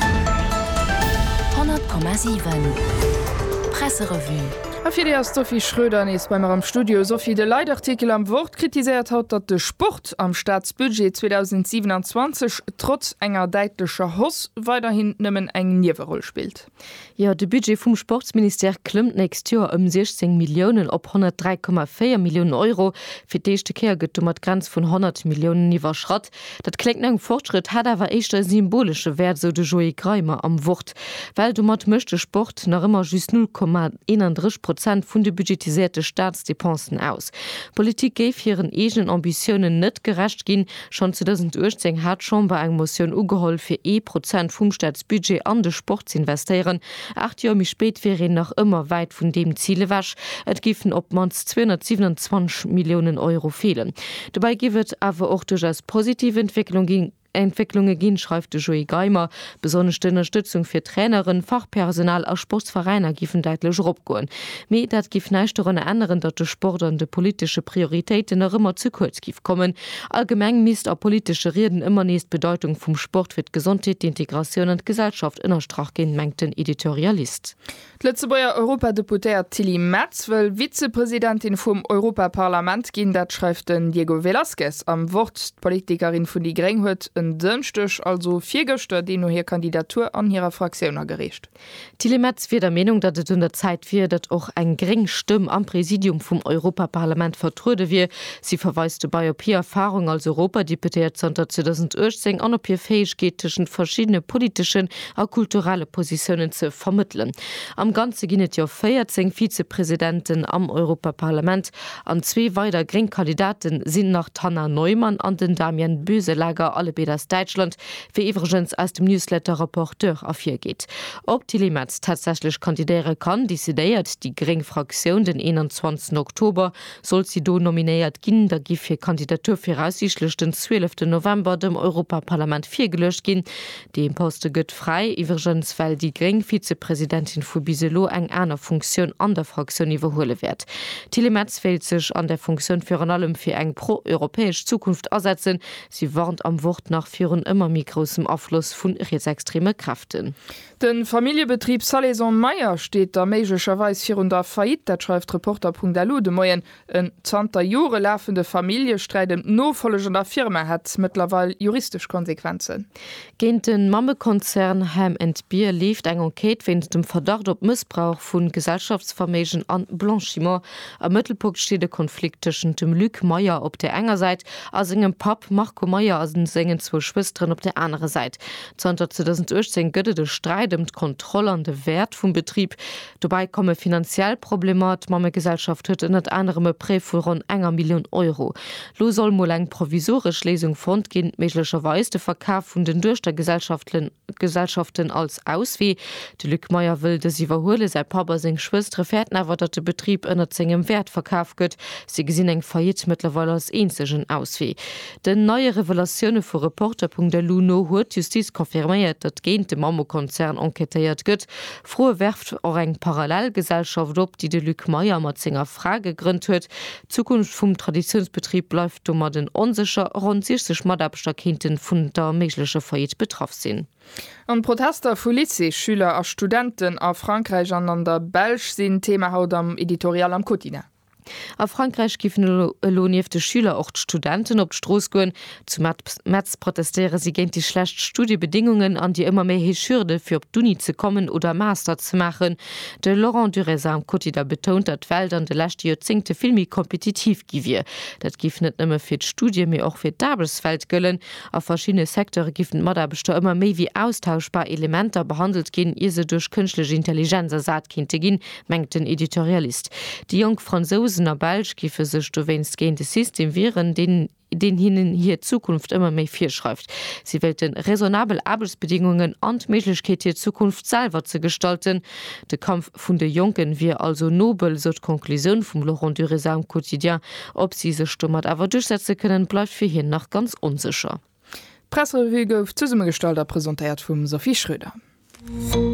100,7 Presserevue A fir déi ass d'Sophie Schröder nees bei mer am Studio. Sophie, de Leitartikel am Wort kritiséiert haut, datt de Sport am Staatsbudget 2027 trotz enger däitlecher Hausse weiderhin nëmmen eng Nieweroll spillt. Jo, de Budget vum Sportsministère klëmmt d'nächst Joer ëm 16 Milliounen op 103,4 Milliounen Euro. Fir d'éischte Kéier gëtt domat d'Grenz vun 100 Milliounen iwwerschratt. Dat kléngt no engem Fortschrëtt, hätt awer éischter e symbolesche Wäert, esou de Joé Greimer am Wort, well domat mécht de Sport nach ëmmer just 0,31 Prozent vun de budgetiséierte Staatsdepensen aus. D'Politik géif hiren eegenen Ambitiounen net gerecht ginn. Schonn 2018 hat d'Chamber eng Motioun ugeholl, fir ee Prozent vum Staatsbudget an de Sport z'investéieren. Aacht Joer méi spéit wier een nach ëmmer wäit vun deem Zil ewech, et géifen op d'mannst 227 Milliounen Euro feelen. Dobäi géif et awer och duerchaus positiv Entwécklunge ginn, schreift de Joé Geimer. Besonnesch d'Ënnerstëtzung fir Traineren, Fachpersonal a Sportsveräiner géifen däitlech eropgoen. Mee dat géif näischt dorunner änneren, datt de Sport an de politesche Prioritéiten nach ëmmer ze kuerz géif kommen. Allgemeng misst a politesche Rieden ëmmer nees d'Bedeitung vum Sport fir d'Gesondheet, d'Integratioun an d'Gesellschaft ënnerstrach ginn, mengt den Editorialist. D'Lëtzebuerger Europadeputéiert Tilly Metz wëll Vizepresidentin vum Europaparlament ginn. Dat schreift den Diego Velázquez am Wort. D'Politikerin vun déi gréng huet en Dënschdeg, also virgëschter, deemno hir Kandidatur an hirer Fraktioun agereecht. D'Tilly Metz wier der Meenung, datt et un der Zäit wier, datt och eng gréng Stëmm am Präsidium vum Europaparlament vertruede wier. Si verweist dobei op hir Erfahrung als Europadeputéiert zanter 2018 an op hir Fäegkeet, tëschent verschiddene politeschen a kulturelle Positiounen ze vermëttelen. Am Ganze ginn et jo 14 Vizepresidenten am Europaparlament an zwee weider gréng Kandidate sinn nach, d'Hanna Neumann an den Damian Boeselager, allebéid aus Däitschland, wéi iwwregens aus dem Newsletter Rapporteur ervirgeet. Ob d'Tilly Metz tatsächlech kandidéiere kann, decidéiert déi gréng Fraktioun den 21 Oktober. Sollt si do nominéiert ginn, da giff hir Kandidatur viraussiichtlech den 12 November dem Europaparlament virgeluecht ginn. Dee Poste gëtt fräi, iwwregens well déi gréng Vizepresidentin vu bis elo eng aner Funktioun an der Fraktioun iwwerhuele wäert. D'Tilly Metz wéilt sech an där Funktioun virun allem fir eng pro-europäesch Zukunft asetzen, Si warnt am Wort nach virun ëmmer méi groussem Afloss vu rietsextreme Kräften. De Familljebetrib Salaison Mayer steet da méiglecherweis virun der Faillite, dat schreift Reporter.lu de Moien. En zanter Jore lafende Familljesträit ëm d'Nofollech an der Firma hätt mëttlerweil juristesch Konsequenzen. Géint de Mammekonzern Ham and Beer leeft eng Enquête wéinst dem Verdacht op Mëssbrauch vu Gesellschaftsverméigen a Blanchiment. Am Mëttelpunkt steet e Konflikt tëschent dem Luc Meyer op der enger Säit a sengem Papp Marco Meyer a sengen zwou Schwësteren op der anerer Säit. Zanter 2018 gëtt et e Sträit ëm d'Kontroll an de Wäert vum Betrib. Dobäi komme finanziell Problemer, d'Mammegesellschaft huet ënnert anerem e Prêt vu ronn enger Millioun Euro. Lo soll mol eng provisoresch Léisung fonnt ginn, méiglecherweis de Verkaf vun den Duechtergesellschaften als Auswee. De Luc Meyer wëll dës iwwerhuelen, säi Papp a seng Schwëstere fäerten awer, datt de Betrib ënnert sengem Wäert verkaf gëtt. Si gesinn eng Faillite mëttlerweil als eenzegen Auswee. Den neie Revelatioune vu Reporter.lu no huet d'Justiz confirméiert, datt géint de Mammekonzern enquêtéiert gëtt. D'Froe werft och eng Parallelgesellschaft op, déi de Luc Meyer mat senger Fra gegrënnt huet. D'Zukunft vum Traditiounsbetrib bleift domadden onsécher. Ronn 60 Mataarbechter kéinte vun der méiglecher Faillite betraff sinn. An d'Protester vu Lycéesschüler a studenten a Frankräich an an der Belsch sinn Thema haut am Editorial am Quotidien. A Frankräich géifen elo nieft de Schüler och d'Studenten op d'Strooss goen. Zu Metz protestéiere si géint déi schlecht Studiebedéngungen an déi ëmmer méi héich Hürde fir op d'Uni ze kommen oder e Master ze maachen. De Laurent Durezat am Quotidien betount, datt d'Welt an de leschte Joerzéngte vill méi kompetitiv gi wier. Dat géif net nëmme fir d'Studie mee och fir d'Aarbechtswelt gëllen. A verschiddene Secteure géifen d'Mataarbechter ëmmer méi wéi austauschbar Elementer behandelt ginn, ier se duerch kënschtlech Intelligenz ersat kéinte ginn, mengt den Editorialist. Déi jonk Fransousen a Belsch géife sech dowéinst géint e System wieren, deen deen hinnen hir Zukunft ëmmer méi virschreift. Si wéilte raisonnabel Aarbechtsbedingungen an d'Méiglechkeet, hir Zukunft selwer ze gestalten. De Kampf vun de Jonken wier also nobel, sou d'Conclusioun vum Laurent Dureza am Quotidien. Ob si sech domat awer duerchsetze kënnen, bleift fir hien nach ganz onsécher. D'Pressrevue gouf zesummegestallt a presentéiert vum Sophie Schröder.